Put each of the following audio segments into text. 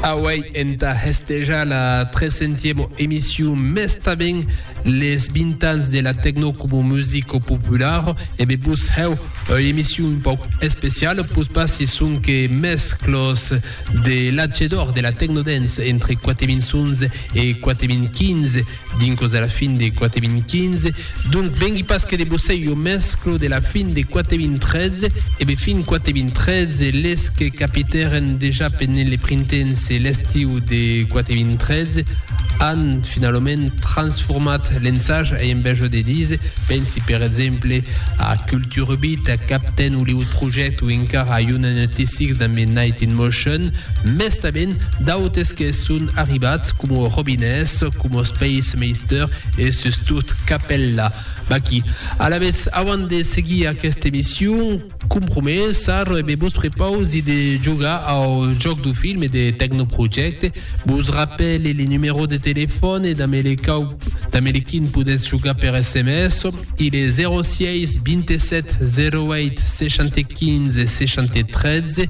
Auèi entà hestejar la trescentièma emission mes tanben les 20 ans de la tecno coma musica populara e be vos hèu ua emission un pauc especiala pus passi sonque mes clos de l'atge d'òr de la tecno dance entre 4011 e 4015 Dincos de la fin de 4015, donc vengui pas que de bossei jo mesclo de la fin de 4013 e be fin 4013 les que capitèren dejà pendent le printens e l'estiu de 4013 an finalament transformat l'ensage a enveja de dise, pensi per exemple a Kulturbit, a Captain Hollywood Project o encara a Unanotisics damb Night in Motion, mès tanben d'autes que son arribats como robinets, como peis meisteur e sustot capèlla. Vaquí. Alavetz, avant de seguir aquesta emission, com promesar, me vos prepausi de jogar au jòc du film e de Tecnoprojecte. Vos rapèle le numèro de telefòn e damb le quau damb le quin podètz jogar per sms, il est 06 27 08 75 60 13,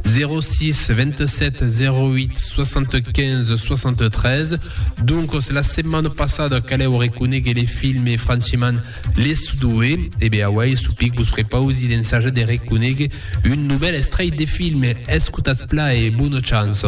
06 27 08 75 73 Doncos la setmana passada calèu reconegue le film e franchement les sudoe e be awai supic vos prepausi d'ensajar de reconegue un nouvel estrei de film escotatz pla e bona chance.